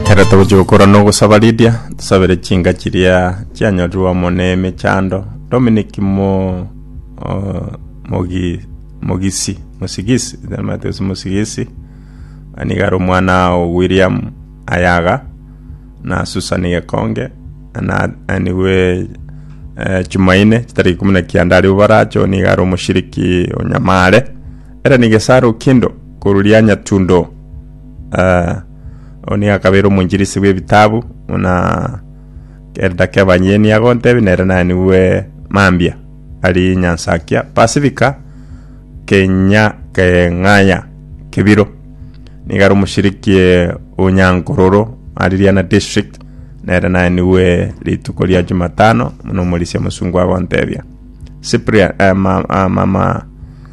Ekero togochia gokora na ogosaba Lydia, tusabere chinka chiria chianyorirwe amo ne emechando. Dominic mo o- mogi mogisi mosigisi namanyete gose mosigisi, na nigo are omwana o William Ayaga, na Susan Gekonge, na anigwe eh Jumaine chitariki ikomi na kianda aria Oboracho, nigo are omoshiriki o Nyamare. Era nigesaro kendo korwa rianyatundo. Eh, oo nigo akabeire omoinchirisi bw'ebitabu, buna Elder Kevin ye nigo agontebia, nere naye nigwe mambia ari Nyansakia Pasifika, Kenya Keng'aya, Kibiro. Nigo are omoshiriki eh, o Nyankororo, ari Riana District, nere naye nigwe rituko ria Jumatano, buna omorisia omosungu agontebia. Cyprian, eh, ma, ah, mama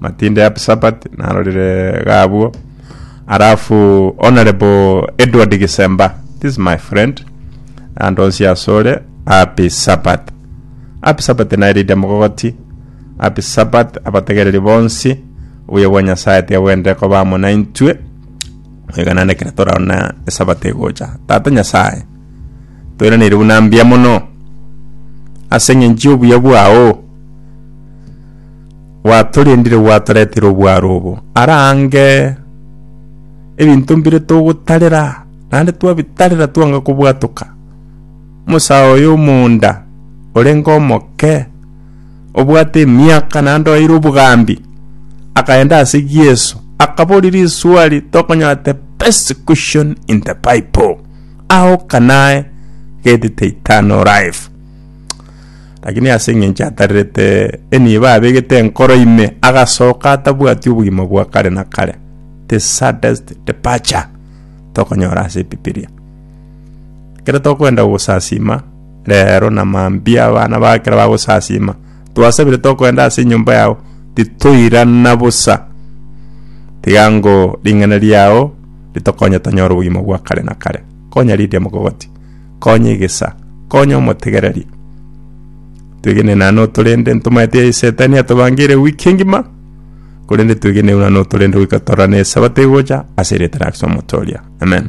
Matinde ya Sabbath narorire gabwo. Alafu Honorable Edward Gisemba, this is my friend, and onsi asore happy Sabbath. Happy Sabbath nairide mogogoti. Happy Sabbath abategereri bonsi. Obuya bwa Nyasaye tiga bwende koba amo naintwe. Iga naende ekero toraona esabato egocha. Tata Nyasaye, toiraneire buna mbuya mono ase eng'encho y'obuya bwao. Gwatorendire gwatoretire obwaro obo are ange. Ebinto mbire togotarera naende twabitarera twanga kobwatoka. Omosae oye omonda orenge omoke, obwate emiaka naende oeire obogambi, akaenda ase Yeso akaboria riswali tokonyora the best question in the bible, How can I get the eternal life? Lakini ase engencho atarerete enibo abegete enkoro ime, agasoka atabwati obogima bwa kare na kare. The saddest departure tokonyora ase ebibilia. Ekero tokoenda gosasima rero na mambia abana ba ekero bagosasima, twasabire tokoenda ase enyomba yao titoirana bosa. Tiga ngo ring'ana riao ritokonye tonyore obogima bwa kare na kare. Konya riria mogogoti. Konya egesa, konya omotegereri. Twegene na notorende ntomaete ya Setani atobangeire wiki engima, korende twegene na notorende goika torora na Esabato egocha ase erieta na ase omotoria. Amen.